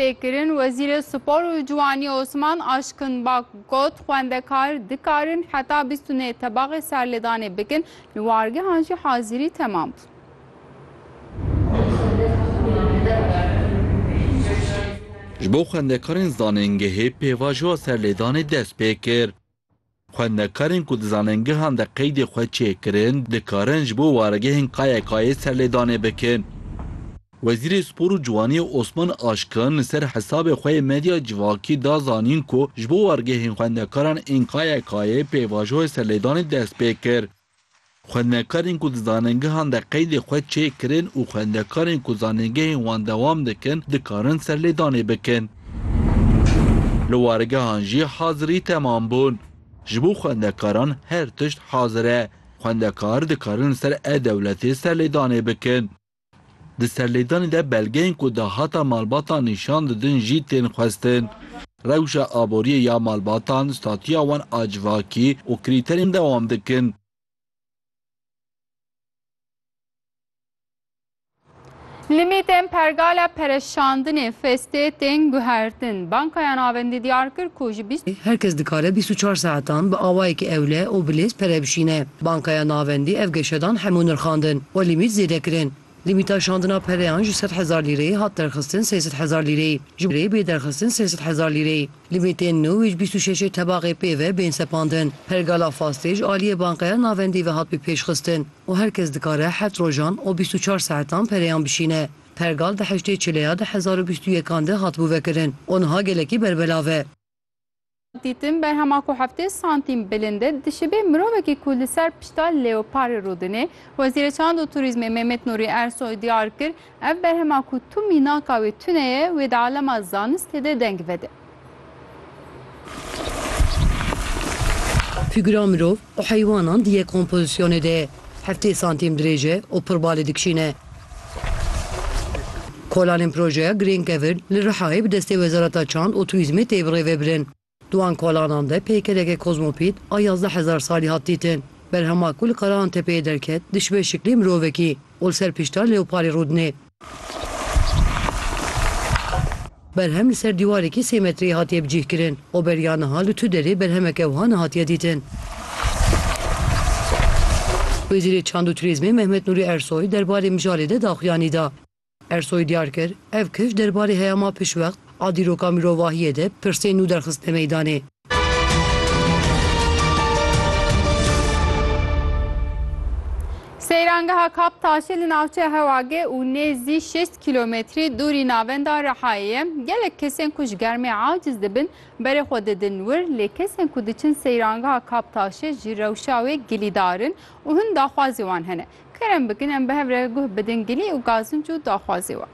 Pêkirin, Wezîrê Spor û Ciwanî Osman Aşkin Bak got, Xwendekar dikarin heta bîst û nê tebaxê serlêdanê bikin, li wargehan jî hazîrî temam bûn. Ji bo xwendekarên zanîngehê pêvajoya serlêdanê dest pê kir. Xwendekarên ku di zanengehan de qeydê xwe çêkirin, dikarin ji bo waregehên KYK'ê serlêdanê bikin. Wezîrê Spor û Ciwaniyê Osman Aşkin li ser hesabê xwe yê medya civakî da zanîn ku ji bo wargehên xwendekaran ên KYK'ê pêvajoyê serlêdanê dest pê kir. Xwendekarên ku di zanîngehan de qeydê xwe çê kirin û xwendekarên ku zanîngehên wan dewam dikin dikarin serlêdanê bikin. Li wargehan jî hazirî temam bûn. Ji bo xwendekaran her tişt hazir e. Xwendekar dikarin li ser e-dewletê serlêdanê bikin. Di serlêdanê de belgeyên ku dahata malbatan nîşan didin jî tên xwestin. Rewşa aboriyê ya malbatan, statuya wan a civakî û krîterên dewam dikin. Limîtên pergala pereşandinê Festê tên guhertin. Bankaya Navendî diyar kir ku ji bîst. Her kes dikare bîst û çar saetan bi awayekî ewle û bi lêz pere bişîne. Bankaya Navendî ev geşedan hemû nirxandin û lîmît zêde kirin. Lîmîta şandina pereyan ji sed hezar lîreyê hat derxistin sê sed hezar lîreyê, ji rê bê derxistin sê sed hezar lîreyê. Lîmîtên nû ê ji bîst û şeşê tebaxê pê ve bên sepandin. Pergala fastê ji aliyê Bankaya Navendî ve hat bi pêşxistin û her kes dikare heft rojan û bîst û çar saetan pereyan bişîne. Pergal di heştê çileya di hezar û bîst û yekan de hatibû vekirin û niha gelekî berbelav e. Dîtin berhema ku heftê santîm bilind e, dişibê mirovekî ku li ser pişta leoparê rûdine. Wezîrê Çand û Turîzmê Mehmet Nurî Ersoy diyar kir, ev berhema ku tu mînaka wê tune ye, wê di alema zanistê de deng vede. Figira mirov, û heywanan di yek kompozisyonê de heftê santîm dirêj e û pir balê dikişîne. Kolanên projeya Green Cavern li Rihayê bi destê Wezareta Çand û Turîzmê tê birêvebirin. Di wan kolanan de peykereke kozmopît a yazdeh hezar salî hat dîtin. Berhema ku li Karaantepeyê derket dişibe şiklê mirovekî û li ser pişta leoparê rûdinê. Berhem li ser dîwarekî sê metreyî hatiye bicîhkirin. Oberiya niha li tu derê berhemeke wiha nehatiye dîtin. Wezîrê Çand û Turîzmê Mehmet Nûrî Ersoy derbarê mijarê de daxuyanî da. Ersoy diyar kir, Ev kişt derbarê heyama piştwext a dîroka mirovahiyê de pirsên nû derxistine meydanê. Seyrangeha Kap Taşê li navçeya Hewagê û nêzî şêst kîlometrî dûrî navenda Rihayê ye. Gelek kesên ku ji germê aciz dibin berê xwe didin wir lê kesên ku diçin seyrangeha Kap Taşê ji rewşa wê gilîdar in û hin daxwazê wan hene. Kerem bikin em bi hev re guh bidin gilî û gazinc û daxwazê wan.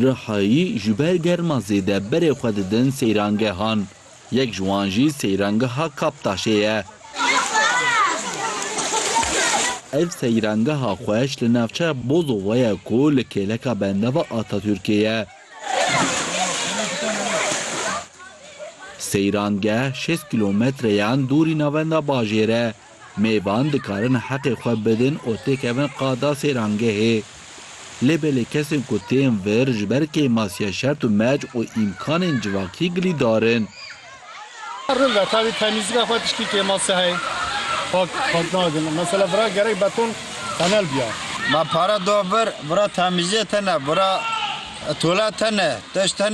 Rihayî ji ber germa zêde berê xwe didin seyrangehan. Yek ji wan jî seyrangeha Kaptaşê ye. Ev seyrangeha xweş li navçeya Bozova ye ku li kêleka bendava Atatürkê ye. Seyrangeh şêst kîlometreyan dûrî navenda bajêr e. Mêvan dikarin heqê xwe bidin û têkevin qada sêrangehê. Lê belê kesên ku tên vir ji ber kêmasiya şert û mec û îmkanên civakî gilîdar in. Rind e tevî temîzîka xwe tiştî kêmasiya heye. Pak pak nadin. Mesela vira gerek beton tenel biya. Ma pare da vir, vira temîziyê tene, vira tolete ne, tişt ne.